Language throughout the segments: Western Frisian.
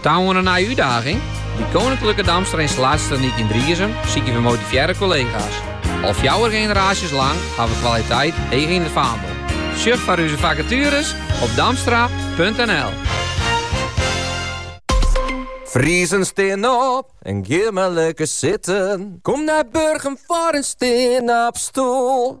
Ta oan in nije útdaging? By Koninklijke Damstra Installatietechniek yn Driezum sykje we motivearre kollega's. Al fjouwer generaasjes lang ha we kwaliteit heech yn it faandel. Sjoch foar ús fakatueres op damstra.nl. Friezen stean op en gean mar lekker sitten. Kom nei Burgum foar in stean-op-stoel.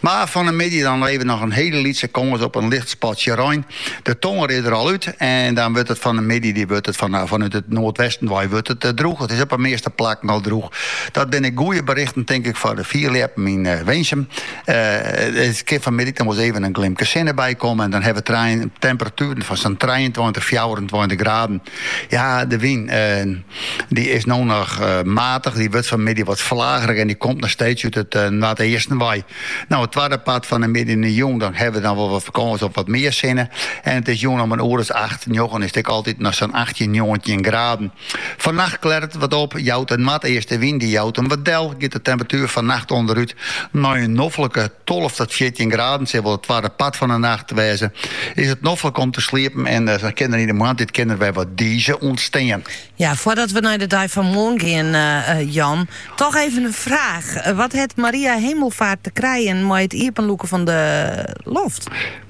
Mar fan 'e middei dan hawwe we noch in hiele lytse kâns op in licht spatsje rein. De tongery is der al út en dan wurdt it fan 'e middei dy wurdt it fan fanút it noardwesten wei wurdt it droech. It is op 'e measte plakken al droech. Dat binne goeie berichten tink ik foar de fierljeppen yn Winsum. It kin fan middei noch wol even in glimke sinne by komme en dan hawwe we temperatueren fan sa'n trijeentweintich, fjouwerentweintich graden. Ja, de wyn. Dy is no noch eh, matich, dy wurdt fan middei wat flagerich en dy komt noch steeds út it eh, noardeasten wei. No, it twadde part fan de middei en jûn, dan hawwe we dan wol wat mear kâns op wat mear sinne. En it is jûn om in oere as acht, njoggen is it ek altyd noch sa'n 18, 19 graden. Fannacht klearret it wat op, jout de noardeastewyn, dy jout him wat del, giet de temperatuer fannacht ûnderút. Nei in noflike tolve ta fjirtjin graden sil wol it twadde part fan 'e nacht wêze. Is it noflik om te sliepen en dan kin der yn 'e moarntiid kin der wer wat dize ûntstean. Ja, foardat we nei de dei fan moarn gean, Jan, toch even in fraach. Wat hat Maria Hemelvaart te krijen mei it iepenlûken fan de loft?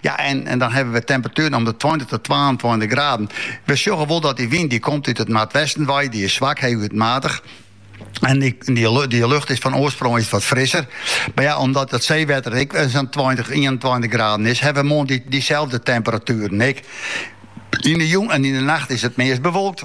Ja, en, en dan hawwe we temperatueren om de tweintich tot twaentweintich graden. We sjogge wol dat dy wyn dy komt út it noardwesten wei, dy is swak, heechút matich. En dy, dy, dy, lucht is fan oarsprong is wat frisser. Mar ja, omdat it seewetter ek eh, sa'n 20, 21 graden is, hawwe we moarn dy, dyselde temperatueren ek. Yn de jûn en yn de nacht is it meast bewolkt.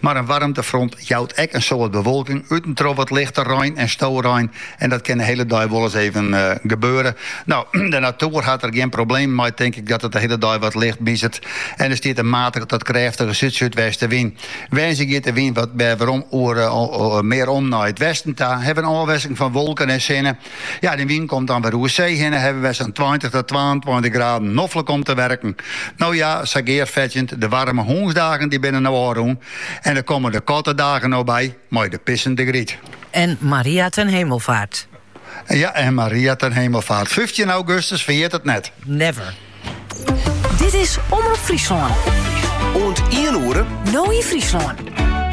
Mar in waarmtefront jout ek in soad bewolking út en troch wat lichte rein en storein en dat kin de hiele dei wolris even gebeure. No, de natoer hat der gjin problemen mei, tink ik dat it de hiele dei wat licht miezert en der stiet in matige tot krêftige súd-súdwestenwyn. Woansdei giet de wyn wat wer werom oer mear om nei it westen ta, hawwe in ôfwikseling fan wolken en sinne Ja, de wyn komt dan wer oer see hinne, hawwe wer sa'n tweintich ta twaentweintich graden, noflik om te werken. No ja, sa gearfetsjend, de waarme hûnsdagen dy binne no ôfrûn en der komme de kattedagen no by mei de pissende Gryt. En Maria ten Hemelvaart. Ja, en Maria ten Hemelvaart. Fyftjin augustus, ferjit it net. Never. Dit is Omrop Fryslân. Oant ien oere. No yn Fryslân.